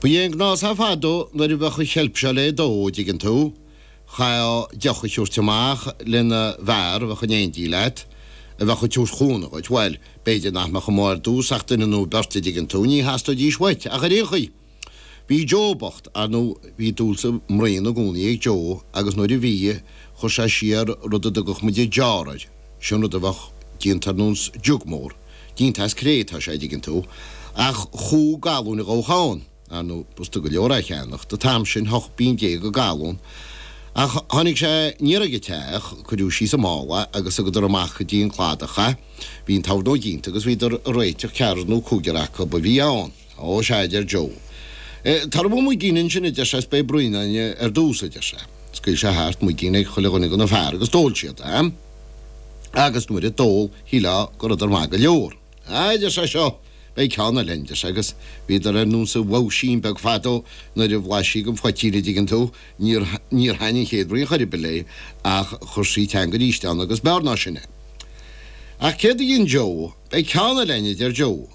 Ba é an gnás é fadó nuair a bheadh an cheilp seo le dó, an dtuigeann tú, chaithfeá deoch a thabhairt amach le haghaidh na bhfear a bheadh in éindí leat, a bheadh ag tabhairt cúnamh dhuit. Bhuel, b'fhéidir nach mbeadh amuigh ar dtús ach duine nó beirt, an dtuigeann tú, ní theastóidís uait ach ar aon chaoi. Bhí Joe bocht, ar ndóigh bhí dúil sa mbraon i gcónaí ag Joe agus nuair a bhí, chuir sé siar rud a dtugadh muid 'jar' air. Sin rud a bheadh déanta ar nós jug mór, déanta as cré, tá sé an dtuigeann tú, ach chúig galún a ghabhfadh ann, ar ndóigh b'fhurasta go leor a cheannach, an t-am sin hocht bpingin déag an galún, ach tháinig sé aniar ag an teach, cuireadh síos i mála agus thugadar amach go dtí an cladach é, bhí an tornóg déanta agus bhíodar ag réiteach ceathrar nó cúigear acu a bhí ann. Ó sea, a deir Joe. Tabhair dom muigín ansin, a deir sé, is beidh braon againn ar dtús, a deir sé. Scaoil sé thart muigín ag chuile dhuine de na fear agus d'ól siad é. Agus nuair a d'ól, shíleá go rabhadar maith go leor. A deir sé, seo, beidh ceann eile againn, deir sé, agus bhíodar ar nós an phuisín beag fadó nuair a bhlais sí den phoitín, a' dtuigeann tú, níor, níor thaitn an chéad bhraon chor ar bith léi ach chuir sí teanga aríst ann agus b'fhearr ná sin é. Ach céard a dhein Joe? Beidh ceann eile againn, a deir Joe.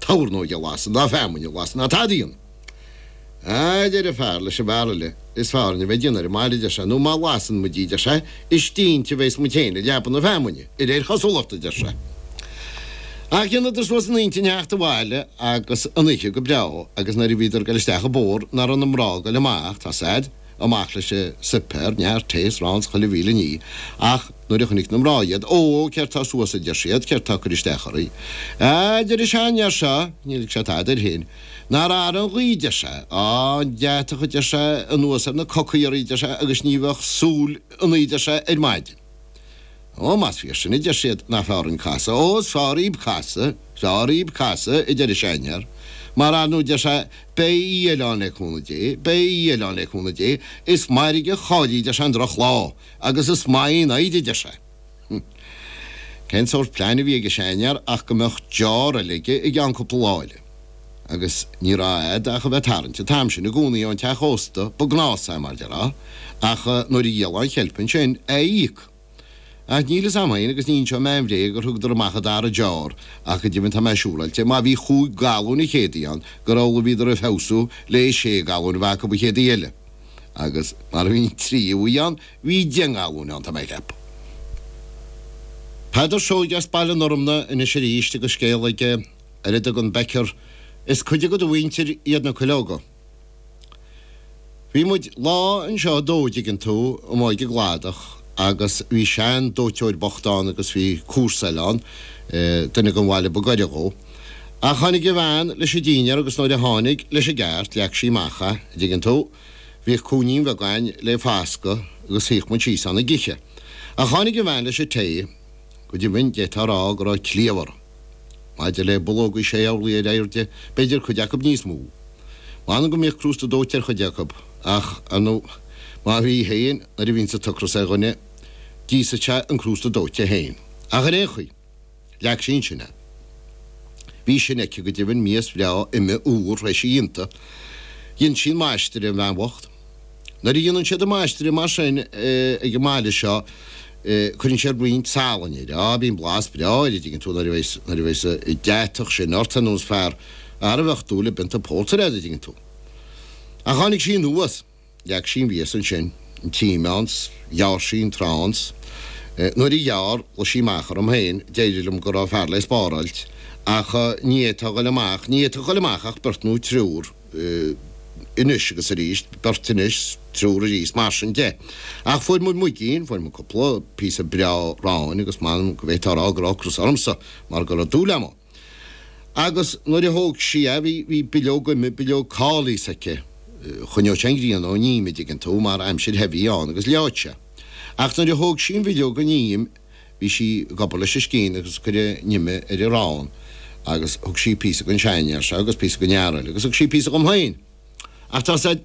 Tornóg a lasadh, ná feamainn a lasadh ná tada díom. A deir an fear leis an bhfear eile, is fearr dúinn a bheith ag déanamh ar an mbaile, deir sé, nó má lasann muid í, deir sé, is inti a bhéas muid féin i leaba na feamainne, de réir chosúlachta, deir sé. Ach dheineadar suas a n-intinn theacht abhaile agus an oíche go breá agus nuair a bhíodar ag dul isteach an bóthar nach raibh na mná ag dul amach, tá a fhios agat, amach leis an suipéar, neart tae, is arán is chuile mhíle ní, ach nuair a chonaic na mná iad, Ó, céard tá suas, a deir siad, céard tá ag cur isteach oraibh. Á, a deir an sean fhear seo, níor lag sé tada air féin, nár athraigh an ghaoth, a deir sé, á, an deatach, a deir sé, anuas ar na cocaí orainn, a deir sé, agus ní bheadh súil ionainn, a deir sé, ar maidin. Ó, más fíor sin, a deir siad, nach fearr dúinn casadh, ó, is fearr daoibh casadh, is fearr daoibh casadh, a deir an seanfhear, mar ar ndóigh deir sé, beidh oíche eile ann le cúnamh Dé, beidh oíche eile ann le cúnamh Dé, is mairg a chaillfí, deir sé, an drochlá, agus is maith an fhoighid, deir sé. Cén sórt pleain a bhí ag an seanfhear ach go mbeadh deor eile aige i gceann cúpla lá eile. agus ní raibh agat ach a bheith ag tarraingt an t-am sin i gcónaí ón teach ósta ba gnás é mar a déarfá ach nuair a dhíolfá an cheilp ansin é a íoc. Ach níl a fhios agam agus ní inseoidh mé an bhréag gur thugadar amach an dara deor ach go deimhin tá mé siúráilte má bhí chúig galúin an chéad oíche ann gur amhlaidh a bhíodar ag feabhsú le sé galúin a bheith acu an chéad oíche eile agus má bhí an tríú hoíche ann bhí deich ngalúin ann tá mé ag ceapadh. Peadar Seoighe as baile i nGarmna anois arís agus scéal aige. Ar a dtugann Becker Is cuid de do mhuintir iad na cuileoga. Bhí muid lá anseo ag dó, an dtuigeann tú, amuigh ag an gcladach agus bhí seandóiteoir bocht ann agus bhí comharsa eile ann, duine den bhaile ba gaire dhó. Ach tháinig a bhean leis an dínnéar agus nuair a tháinig, leis an gceart, leag sí amach a, dtuigeann tú, bhíodh cúinnín bheag ann le fascadh agus shuíodh muid síos ann ag ithe. Ach tháinig a bhean leis an tae. Go deimhin, d'fhéadfá a rá go raibh cliabh uirthi. Maidir le bullógaí, sé horlaí ar airde, b'fhéidir, cuid acu níos mó. M'anam go mbíodh crústa dóite ar chuid acu, ach, ar ndú, má bhí féin, nuair a bhíonns an t-ocras ar dhuine, d'íosfadh sé an crústa dóite féin. Ach ar aon chaoi, leag sí ansin é. Bhí sin aici go deimhin, mias bhreá ime úr, tar éis a bheith déanta. Dhein sí an maistreadh, an bhean bhocht. Nuair a dhéanann siad an maistreadh mar sin ag an mbaile seo cuireann siad roinnt salainn air. Á, bíonn blas breá air, a dtuigeann tú, nuair a bheas an deatach sin ort, ar nós fear a mbeadh dúil i bpionta pórtair aige, a dtuigeann tú. Ach tháinig sí anuas, leag sí an mhias ansin, an t-im ann, 's ghearr sí an t-arán 's nuair a ghearr, ghlaoigh sí amach orm féin, d'éirigh liom go raibh fear le spáráilt, ach ní fhéadfá a ghoil amach, ní fhéadfadh a ghoil amach ach beirt nó triúr. eh, anois agus arís, beirt anois, triúr arís, mar sin de. Ach fuair muid muigín, fuair muid cúpla píosa breá aráin agus m'anam go bhféadfá a rá go raibh ocras ormsa mar go raibh dúil agam ann. Agus nuair a thóg sí a, bhí, bhí bileog ime, bileog cóilís aici. Eh, choinneodh sé an ghrian ón im, a' dtuigeann tú, mar aimsir the a bhí ann agus leáfadh sé. Ach nuair a thóg sí an bhileog gon im, Bhí sí ag obair leis an scian agus ag cur an ime ar an arán agus thug sí píosa gon seanfhear seo agus píosa gon fhear eile agus thug sí píosa dhom féin. Ach tá siad.